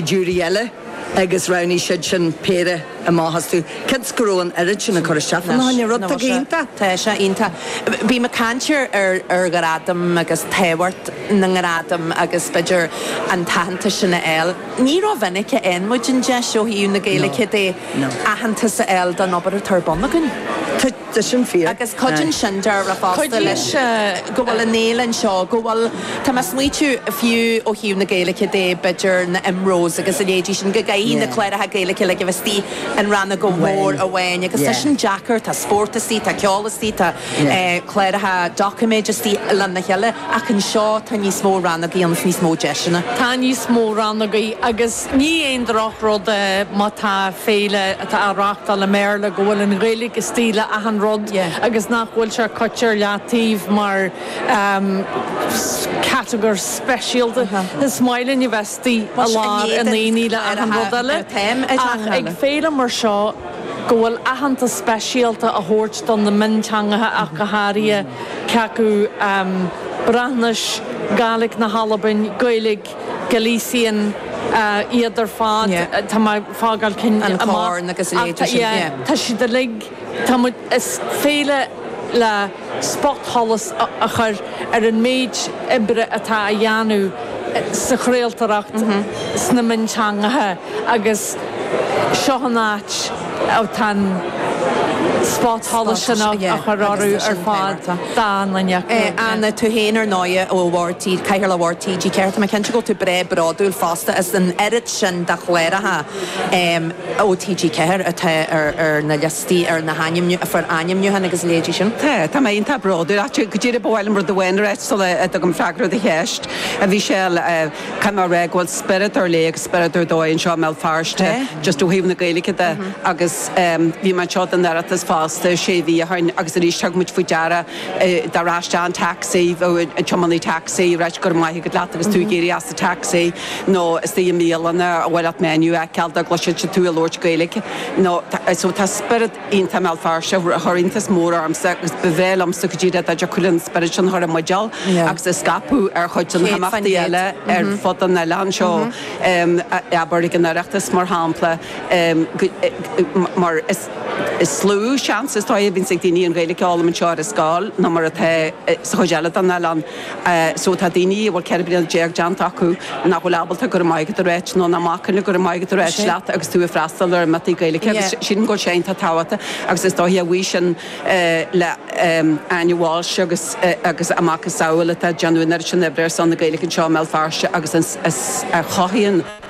jury eile agus roghnaigh siad sin péire amach astu. cionn is go raibh an oiread sin ag cur isteach fána choinne, rud atá iontach. Tá sé iontach. Bhí mé ag caint ar ghradaim agus tábhacht na ngradam agus b'fhéidir an t-aitheantas sin a fháil. Ní rómhinic a fhaigheann muid an deis ó thaobh na Gaeilge de aitheantas a fháil don obair atá ar bun againn. Tá sin fíor. Agus cuideann sin, deirtear fosta, leis go bhfuil an fhéile anseo, go bhfuil, tá mé a' smaoitiú, fiú ó thaobh na Gaeilice de, b'fhéidir na IMROs agus a leithéidí sin, go gcaithfidh na cláracha Gaeilice, like, a bheith istigh in rannóg mhór amháin. Agus tá sin deacair, tá spórt istigh, tá ceol istigh, tá cláracha doiciméid istigh lena chéile, ach anseo tá níos mó rannagaí agus níos mó deiseanna. Tá níos mó rannagaí agus. Ní aon droch-rud é má tá féile atá á reachtáil i mBéarla go bhfuil an Ghaeilge istigh le achan rud agus nach bhfuil sé curtha ar leataobh mar chatagóir speisialta. Is maith linn a bheith istigh i lár an aonaigh le achan rud eile ach ag féile mar seo go bhfuil aitheantas speisialta á thabhairt do na mionteangacha ach go háirithe, cé acu Breatnais, Gàidhlig na hAlban, Gaeilg. Galician iad ar fad. Tá mé ag fágáil cinn amach ach tá, yeah, tá siad uilig, tá muid, is féile le spotsholas a chur ar an méid oibre atá á dhéanamh sa chraoltóireacht sna mionteangacha. agus seo an áit atá an spotsholas á chur orthu ar fad, dánlainne acu. Anna, Tú féin ar ndóighe, ó Bhord, Cathaoirleach Bhord TG4, tá mé cinnte go bhfuil tú breá bródúil fosta as an oiread sin de chláracha ó TG4 atá ar na liostaí, ar na hainmniú, a fuair ainmniúchán agus a leithéidí sin. Tá, tá mé iontach bródúil as. Go díreach ba mhaith liom rud amháin a rá sula dtugaim freagra ar do cheist. Bhí sé Caithfidh mé a rá go bhfuil spiorad ar léith agus spiorad ar dóigh anseo i mBéal Feirste just ó thaobh na Gaeilge de agus bhí mé anseo don Oireachtas fosta sé mhí ó shin agus arís thug muid faoi deara dá raibh isteach an taxi, an tiománaí taxi a' ráit 'go raibh maith agat' leat agus tú ag éirí as an taxi nó istigh i mbialanna a bhfuil ort menu a fheiceáil dá gcloiseann siad tú ag labhairt Gaeilge nó so tá spiorad iontach i mBéal Feirste a chuir iontas mór ormsa agus ba bhreá liomsa go díreach dá dtiocfadh linn an spiorad sin a chur i mbuidéal agus a scaipeadh ar chuid de na himeachtaí eile ar fud an oileáin seo, abair, ag an Oireachtas, mar shampla, mar is lú seans is dóigh a bhíonns ag daoine an Ghaeilge a fhoghlaim anseo ar an scoil ná mar atá sa chuid eile den oileán. so tá daoine a bhfuil 14 bliana déanta acu nach bhfuil ábalta go raibh maith agat a ráit nó nach mbacann go raibh maith agat a ráit leat agus tú ag freastal ar imeachtaí Gaeilge agus sílim go bhfuil sé iontach tábhachtach agus is dóiche a bhuí sin le Áine Walsh agus agus a macasamhail atá ag déanamh an oiread sin oibre ar son na Gaeilge anseo i mBéal Feirste agus a chothaíonn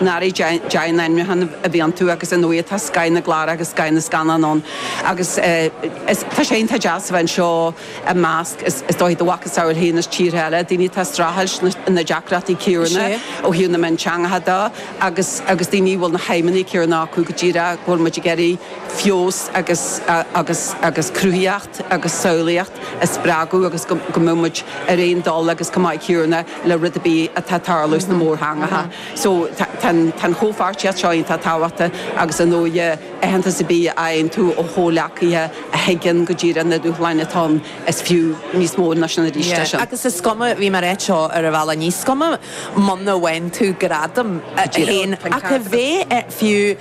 Ár ndóigh ainmniúchán a bhí iontu agus inniu atá scoth na gclár agus scoth na scannán ann agus tá sé iontach deas a bheith anseo i measc, is dóigh, do mhacasamhail féin as tíortha eile, daoine atá ag streachailt na deacrachtaí céanna ó thaobh na mionteangacha de agus agus daoine a bhfuil na haidhmeanna céanna acu go díreach go bhfuil muid ag iarraidh feabhas agus agus agus cruthaitheacht. agus samhlaíocht a spreagadh agus go mbeadh muid ar aon dul agus chomh maith céanna le rud ar bith atá ag tarlú sna mórtheangacha. So tá an chomhpháirtíocht seo iontach tábhachtach agus ar ndóigh aitheantas ar bith a fhaigheann tú ó chomhleacaithe a thuigeann go díreach na dúshláin atá ann, is fiú níos mó ná sin arís é sin. Agus is cuma, bhí mé ag ráit seo ar an bhealach, is cuma muna mbaineann tú gradam, a haon, ach a bheith fiú,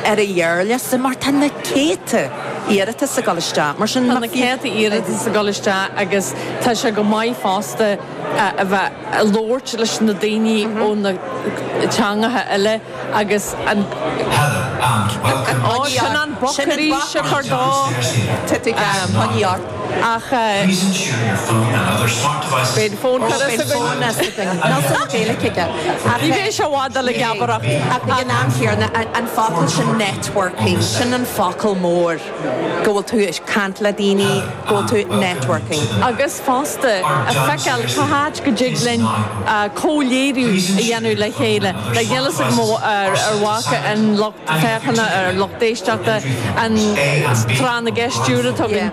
ar an ghearrliosta mar tá na céadta iarratas ag dul isteach. Mar sin. Tá na céadta iarratas ag dul isteach agus tá sé go maith fosta a bheith ag labhairt leis na daoine ó na teangacha eile agus an. Heather, and, welcome. Ó, sin an boc arís a chur dó. Tiocfaidh an t-am. ach. Beidh fonn turas againn. Ní bheidh sé i bhfad eile ag geabaireacht. Ach ag an am chéanna, an focal sin networking, sin an focal mór, go bhfuil tú ag caint le daoine, go bhfuil tú networking. Agus fosta, ag feiceáil cá háit go dtig linn comhléiriú a dhéanamh le chéile. Beidh Neilus ag moladh ar mhaca an lucht féachana, ar lucht éisteachta, an tráth na gceist stiúrtha.